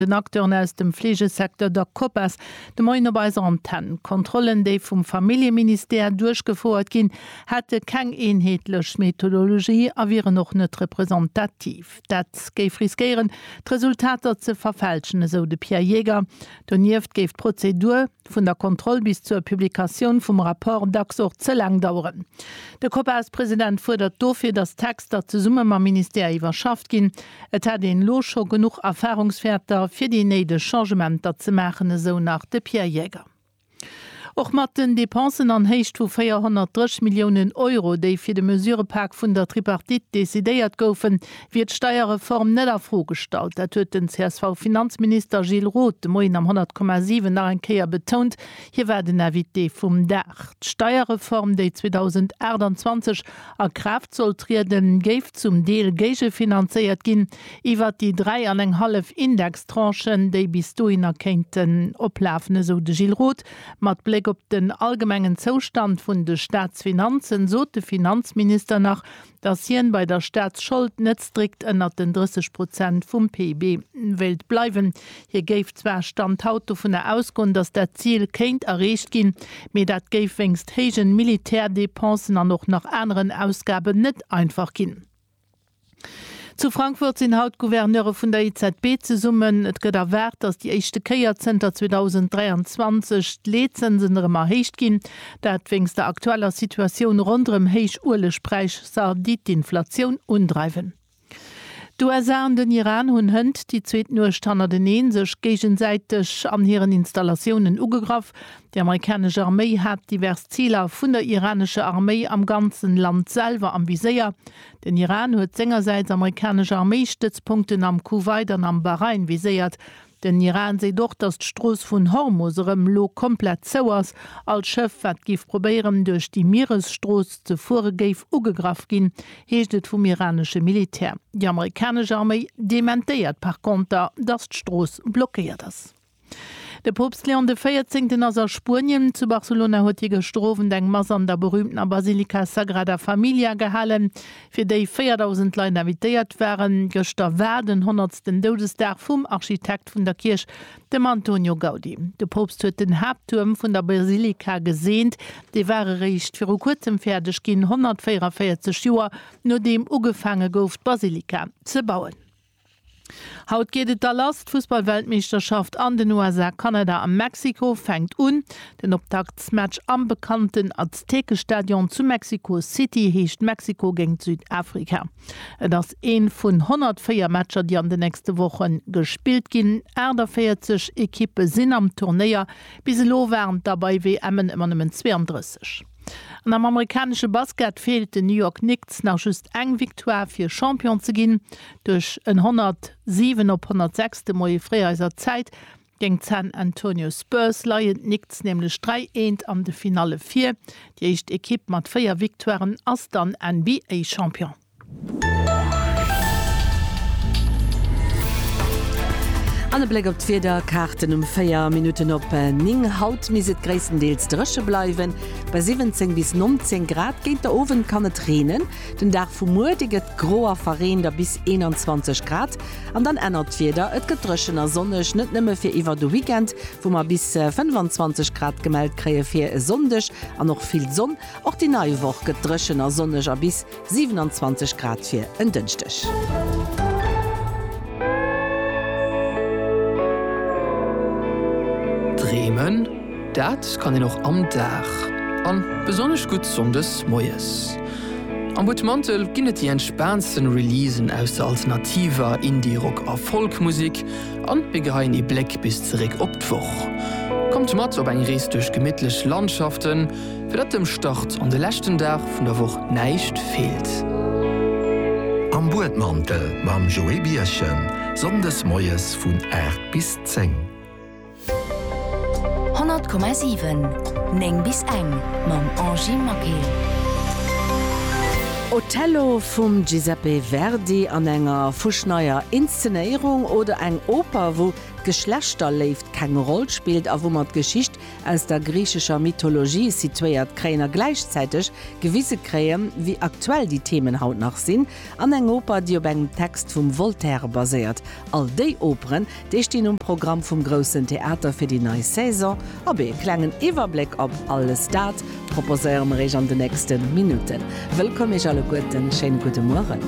den Acteuren aus dem Fleegesecteur der Copas de Moien op eiser Antenn. D'Kontrollen, déi vum Familljeministère duerchgefouert ginn, hätte keng eenheetlech Methodologie a wieren och net representativ. Dat géif riskéieren, d'Resultater ze verfälschen, esou de Pierre Jaeger. Donieft géif d'Prozedur, vun der Kontroll bis zur Publikatioun vum Rapport, dacks och ze laang daueren. De Copas-President fuerdert dofir, datt d'Texter zesumme mam Ministère iwwerschafft ginn. Et hätt een elo scho genuch Erfarungswäerter, fir déi néideg Changementer ze maachen, esou nach de Pierre Jäger. Och mat den Depensen an Héicht vu 430 Milliounen Euro, déi fir de Mesurëpak vun der Tripartite decidéiert goufen, wier d'Steierreform net a Fro gestallt. Dat huet den CSV-Finanzminister Gilles Roth de Moien am 100,7 nach eng Kéier betount. Hie war den Invité vum Dag. D'Steierreform, déi 2028 a Kraaft soll trieden, géif zum Deel géigefinanzéiert ginn iwwert déi dräi an eng hallef Indextranchen, déi bis dohinner kéinten oplafen, esou de Gilles Roth. Mat Bléck op den allgemengen Zoustand vun de Staatsfinanzen sot de Finanzminister nach, datt hien bei der Staatsschold net strikt ënnert den 30 Prozent vum PIB wéilt bleiwen. Hie géif zwar Stand haut dovunner ausgoen, datt dat Zil kéint erreecht ginn, mee dat géif wéinst héijen Militärdepensen an och nach aneren Ausgaben net einfach ginn. Zu Frankfurt sinn haut d'Gouverneure vun der EZB zesummen. Et gëtt erwaart, datt déi éischte Kéier zënter 2023 d'Leetzënsen erëm erhéicht ginn. Dat wéinst der aktueller Situatioun ronderëm héich Uelegpräisser, déi d'Inflatioun undreiwen. D'USA an den Iran hunn hënt déi zweet Nuecht hannerteneen sech géigesäiteg an hiren Installatiounen ugegraff. Déi amerikanesch Arméi hat divers Ziler vun der iranescher Arméi am ganzen Land selwer am Viséier. Den Iran huet sengersäits amerikanesch Arméistëtzpunkten am Kuwait an am Bahrain viséiert. Den Iran seet och, datt d'Strooss vun Hormus erëm elo komplett zou ass. All Schëff, wat géif probéieren, duerch déi Mieresstrooss ze fuere, géif ugegraff ginn, heescht et vum iranesche Militär. Déi amerikanesch Arméi dementéiert par konter, datt d'Strooss blockéiert ass. De Poopst Leon de Véierzéngten ass a Spuenien. Zu Barcelona huet hie gëschter Owend eng Mass an der berüümtener Basilika Sagrada Familia gehalen. fir déi 4.000 Leit invitéiert waren. Gëschter war den honnertsten Doudesdag vum Architekt vun der Kierch, dem Antonio Gaudi. De Poopst huet den Haapttuerm vun der Basilika geseent. Dee war eréischt viru kuerzem fäerdeg ginn, 144 Joer nodeem ugefaange gouf d'Basilika ze bauen. Haut geet et da lass, d'Fussballweltmeeschterschaft an den USA, Kanada a Mexiko fänkt un. Den Optaktsmatch am bekannten Aztekestadion zu Mexico City heescht Mexiko géint Südafrika. Et ass ee vun 104 Matcher, déi an den nächste Woche gespillt ginn. 48 Ekippe sinn am Turnéier, bis elo waren et der bei WMen ëmmer nëmmen 32. An am amerikanesche Basket feelt den New York Knicks nach just eng Victoire fir Champion ze ginn. Duerch en 107 op 106 de Moie fréier eiser Zäit géint d'San Antonio Spurs leien d'Knicks nämlech 3 eent an de Finalle vir. Déi éischt Ekipp mat 4 Victoiren ass dann NBA-Champion. An e Bléck op d'Wiederkaarten um 4 Minutten op 9. Haut misst et gréisstendeels dréche bleiwen, bei 17 bis 19 Grad. Géint de Owend kann et reenen. Den Dag vu muer, dee gëtt gro a verreent a bis 21 Grad. An dann ännert d'Wieder, et gëtt dréchen a sonneg, net nëmme fir iwwer de Weekend, wou mer bis 25 Grad gemellt kréie fir e Sonndeg an och vill Sonn. Och déi nei Woch gëtt dréchen a sonneg a bis. 27 Grad fir en Dënschdeg. Dreemen, dat kann een och am Dag, an besonnesch gutt Sonndes moies. Am Butmantel ginn et déi entspaantsten Releasen aus der alternativer, Indie, Rock a Folk Musik, an mir geheien ee Bléck bis zeréck op d'Woch. Kommt mat op eng Rees duerch gemittlech Landschaften. Fir datt dem Start an de leschten Dag vun der Woch näischt feelt. Am Buedmantel mam Joé Bierchen, Sonndes moies vun 8 bis 10. 100,7, 9 bis eng mam Angy Maquet. Otello vum Giuseppe Verdi an enger fuschneier Inszenéierung oder eng Oper, wou d'Geschlechterléift keng Roll spillt a wou mer d'Geschicht Aus der griichescher Mythologie situéiert Kréien a gläichzäiteg gewise Kréien, wéi aktuell déi Themen haut nach sinn, an eng Oper, déi op engem Text vum Voltaire baséiert. All déi Operen, déi stinn um Programm vum Groussen Theater fir déi nei Saison. Op ee klengen Iwwerbléck op alles dat proposéiere mer Iech an de nächste Minutten. Wëllkomm Iech alleguerten, schéine gudde Mueren.